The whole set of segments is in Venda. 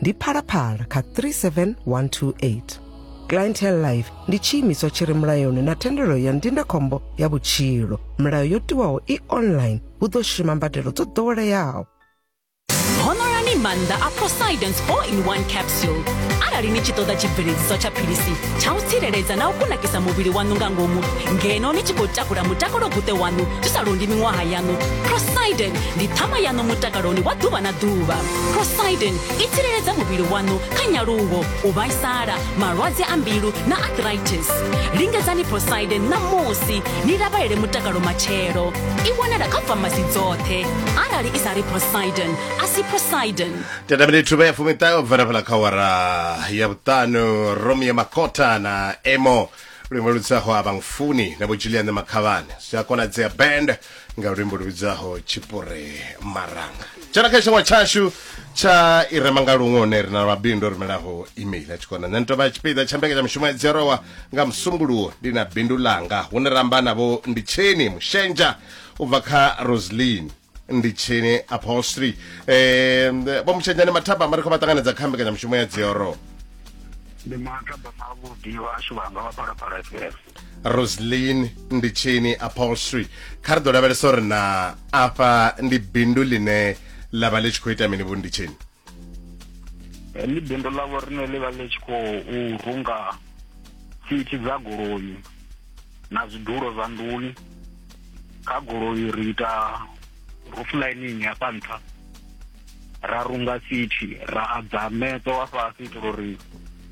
ndi phalaphala kha 37128 clientele life ndi tshiimiswa tshi re mulayoni na thendelo ya ndindakhombo ya vhutshilo milayo yo tiwaho i online hu ḓo shuma mbadelo dzo ḓoweleaho honorani maanḓa a posidons all in one capsule arali ni tshi ṱoḓa tshibveledziswa tsha philisi tsha u tsireledza na u kunakisa muvhili waṋu nga ngomu ngeno ni tshi khou takula mutakalo guṱe waṋu zwi sa londi miṅwaha yaṋu posidon ndi ṱhama yaṋu mutakaloni wa ḓuvha na ḓuvha prosidin i tsireledza muvhili waṋu kha nyaluwo u vhaisala malwadze a mbilu na arthritis lingedzani prosidin ṋamusi ni lavhelele mutakalo matshelo i wanala kha famasi dzoṱhe arali i sa ri prosidin a si prosidin tenda minithu vha ya fumiṱahe u bvela fhala kha wara ya vhuṱanu romi ya makota na emo luimbo lu tsaho a vhangfuni na vho julian makhavhane zwi a konadzea band nga luimbo lu vhidzaho tshipure maranga tshena kha tshiṅwe tshashu tsha i rema nga luṅwe hune ri na mabindu o rumelaho email a tshikona nṋe ni tovha tshipiḓa tsha mbekanya mushumo ya dzerowa nga musumbuluwo ndi na bindu langa hune ra amba navho ndi tsheni mushenja u bva kha roslin ndi tshini upholstery eh vho mushenja ni mathaba mari kho vha ṱanganedza kha mbekanya mushumo ya dzerowa ndi mathaba mavhuḓi vhashu vhanga vha phalaphala fm roslin ndi tshini upholstery kha ri ḓo lavhelesa uri na afha ndi bindu ḽine ḽa vha ḽi tshi khou ita mini vho ndi tshini ndi bindu ḽa vho rine ḽi vha ḽi tshi khou runga sithi dza goloi na zwidulo zwa nḓuni kha goloi ri ita roof lining hafha nṱha ra runga sithi ra adza meṱo wa fhasi itela uri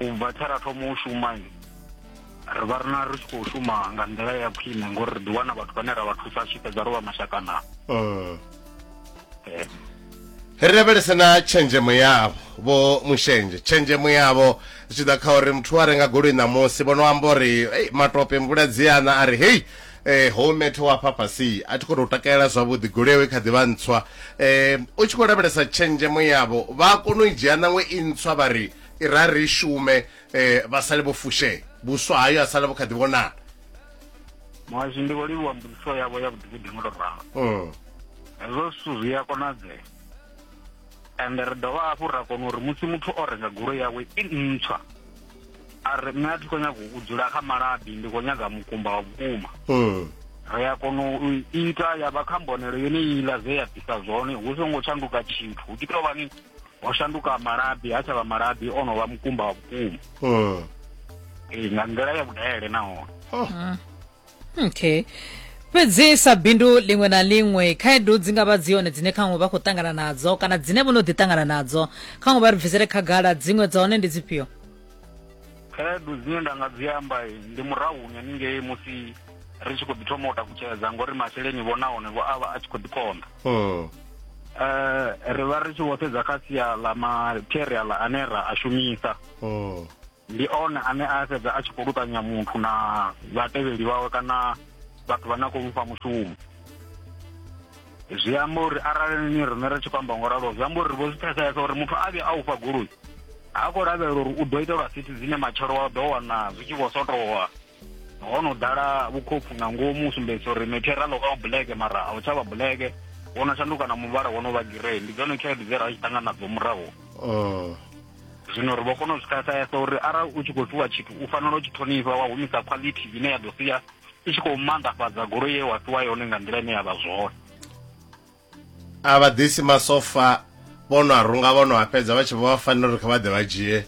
u bva tshe ra thoma u shuma ri vha ri na ri tshi khou shuma nga nḓila ya khwine ngori ri ḓiwana vhathu vhane ra vha thusa tshi fhedza ro vha mashakana mm. eh. ri lavhelese na tshenzhemo yavho vho mushenje tshenzhemo yavho zwi tshi ḓa kha uri muthu a renga goloi ṋamusi vho no amba uri matope mvula dziana a ri hei Ee, hou Methe wa hafha fhasi a thi khou tou takalela zwavhuḓi. Goloi yawe i kha ḓi vha ntswa. U tshi khou lavhelesa tshenzhemo yavho, vha a kona u i dzhia ṋaṅwe i ntswa vha ri i rali i shume vha sale vho fushea, vhuswa hayo ha sala vhu kha ḓi vhonala. Muhasho ndi vho livhuwa mbudziso yavho ya vhuḓifhinduleli, ngo tou ralo. Hezwo zwithu zwi a konadzea. and ri dovha hafhu ra kona uri musi muthu o renga goloi yawe i ntswa a ri nṋe a thi khou nyaga u dzula kha malabi ndi khou nyaga mukumba wa vhukuma mm. ri a kona u ita ya vha kha mbonelo yone iḽa zwe ya bvisa zwone hu songo shanduka tshithu hu tshi tou vhani ho shanduka malabi ha tsha vha malabi o no vha mukumba wa vhukuma mm. ee nga nḓila ya vhudele nahone oh. mm. okay fhedzi sa bindu liṅwe na liṅwe khaedu dzi nga vha dzi hone dzine khaṅwe vha khou ṱangana nadzo kana dzine vho no ḓi ṱangana nadzo khaṅwe vha ri bvisele khagala dziṅwe dza hone ndi dzifhio khaedu dzine nda nga dzi amba ndi murahu nyaningei musi ri tshi khou ḓi thoma u takutshedza ngori masheleni vho nahone vho a vha a tshi khou ḓi konḓa um ri vha ri tshi vho sedza kha sia ḽa material ane ra a shumisa um ndi one ane a fhedza a tshi khou luṱanya muthu na vhatevheli vhawe kana vhathu vhane a khou mufha mushumo zwi amba uri arali ni riṋe ri tshi khou amba ngo ralo zwi amba uri ri vho zwi pfesesa uri muthu a vhe a u fha goloi ha khou lavhelela uri u ḓo itelwa sithi dzine matshelo wa ḓo wana zwi tshi vho sotowa ho no ḓala vhukhopfu nga ngomu u sumbedzisa uri methera ḽo vha bulege mara a u tsha vha bulege wo no shanduka na muvhala wo no vha girei ndi dzone khaedu dze ra tshi ṱangana nadzo murahu oh. zwino ri vho kona u zwi khasayesa uri arali u tshi khou fhiwa tshithu u fanela u tshi ṱhonifha wa humisa quality ine ya ḓo sia i tshi khou maanḓafhadza goloi ye wa fhiwa yone nga nḓila ine ya vha zwone a vha ḓisi masofa vho no a runga vho no a fhedza vha tshi vho vha fanela uri kha vha ḓe vha dzhie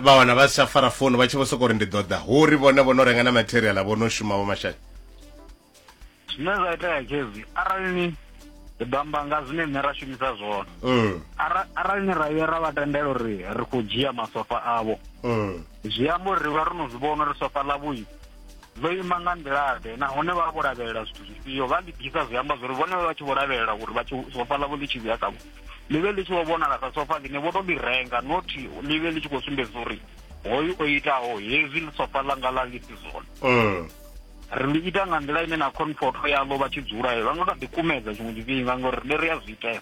vha wana vha si tsha fara founu vha tshi vho sokou ri ndi ḓoḓa hu ri vhone vho no renga na material vho no shuma vho mashaka zwine zwa itea khezi arali ni ri ḓo amba nga zwine nṋe ra shumisa zwone mm. arali ni ra vhuya ra vha tendela uri ri khou dzhia masofa avho mm. zwi amba uri ri vha ro no zwi vhona uri sofa ḽa vhuyi vho ima nga nḓila-ḓe nahone vha vho lavhelela zwithu zwifhio vha ḽi ḓisa zwi amba zwori vhone vha tshi vho lavhelela uri vha tshi sofa ḽavho ḽi tshi vhuya kavho ḽi vhe ḽi tshi vho vhonala sa sofa ḽine vho to ḽi renga not ḽi vhe ḽi tshi khou sumbedza uri hoyu o itaho hezwi ḽi sofa ḽanga ḽa ḽi si zwone mm. ri ḽi ita nga nḓila ine na comfort yaḽo vha tshi dzula vha nga kha ḓi kumedza tshiṅwe tshifhinga ngori ri ri a zwi itea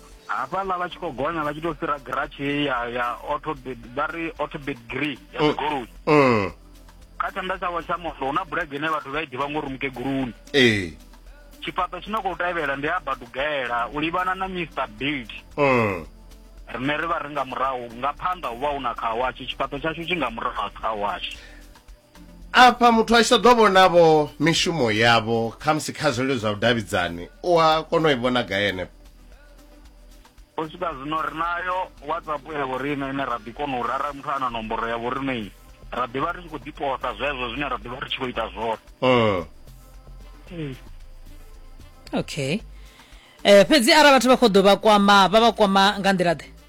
hafhaḽa vha tshi khou gonya vha tshi tou fhira giratshi heyi ya ya autobed vha ri autobed gree ya oh, dzigoloi oh. kha tshanḓa tshavho tsha mondo hu na bulege ine vhathu vha i ḓivha ngori mukeguluni ee tshifhaṱo tshi no khou tevhela ndi a badugela u livhana na mr bid oh. rine ri vha ri nga murahu nga phanḓa hu vha hu na khawashi tshifhaṱo tshashu tshi nga murahu ha khawashi afha muthu a tshi ṱoḓo vhonavho mishumo yavho khamusi kha zwilelo zwa vhudavhidzani u a kona u i vhona gai henefho u swika zwino ri nayo whatsapp ya vhoriṋe ine ra ḓi kona uri arali muthu a na nomboro ya vhoriṋei ra ḓivha ri tshi khou ḓiposa zwezwo zwine ra ḓivha ri tshi khou ita zwone Mm. okay um fhedzi arali vhathu vha khou ḓo vha kwama vha vha kwama nga nḓila ḓe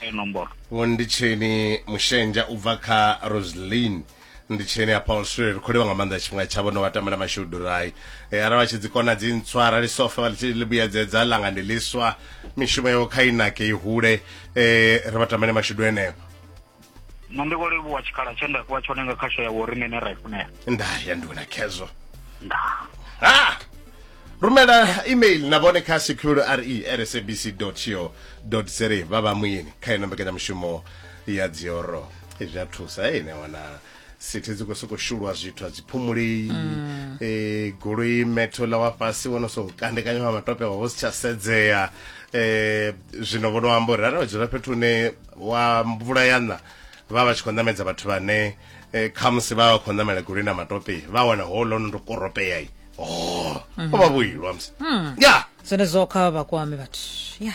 e nomboro vho ndi tsheni mushenja u bva kha roselin ndi tsheni a paul sure ri kholiwa nga maanḓa tshifhinga tshavho no vha tamela mashudu rai e, arali vha tshi dzi kona dzi ntswa arali sofa vha tshi ḽi vhuyedzedza langa ndi ḽiswa mishumo yavho kha inake i hule e, ri vha tamele mashudu eneo nṋe ndi khou livhuwa tshikhala tshe nda fhiwa tshone nga khasho ya vho riṋe ne ra i funela nda ya ndi wena khezwo nda ha rumela email na vhone kha secure re at sabc co za vha vha muyeni kha ino mbekanyamushumo ya dzioro zwi a thusa ine wana sithi dzi khou sokou shulwa zwithu a dzi phumulei um goloi metho ḽa wa fhasi wo no sokou kandekanya wa matope wa vho si tsha sedzea um zwino vho no amba uri arali vha dzula fhethu hune wa mvula ya ṋa vha vha tshi khou ṋamedza vhathu vhane um khamusi vha vha khou ṋamela goloi na matope vha wana ho ḽo no ndo koropeai o oh, mhm. vha vhoilwa musi ya zwenezwo kha vha vhakwame vhathu ya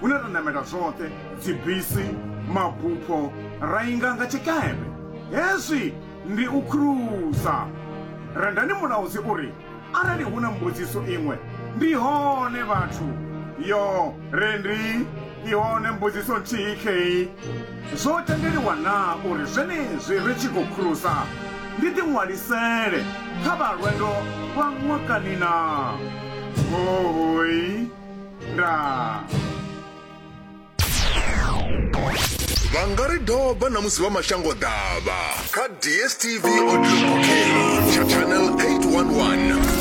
hune ra ṋamela zwoṱhe, dzibisi, mabupho, ra inga nga tshikepe. Hezwi ndi u khulusa. Rendani Mulaudzi u ri, Arali hu na mbudziso iṅwe, ndi hone vhathu. Yo, Rendi, i hone mbudziso nthihi khei. Zwo tendeliwa naa uri zwenezwi ri tshi khou khulusa ndi ḓiṅwalisele kha vha lwendo lwa ṅwakani naa? Hoooi! nda vha nga ri doba na musi vha mashango ḓavha kha dstv audio booking channel 811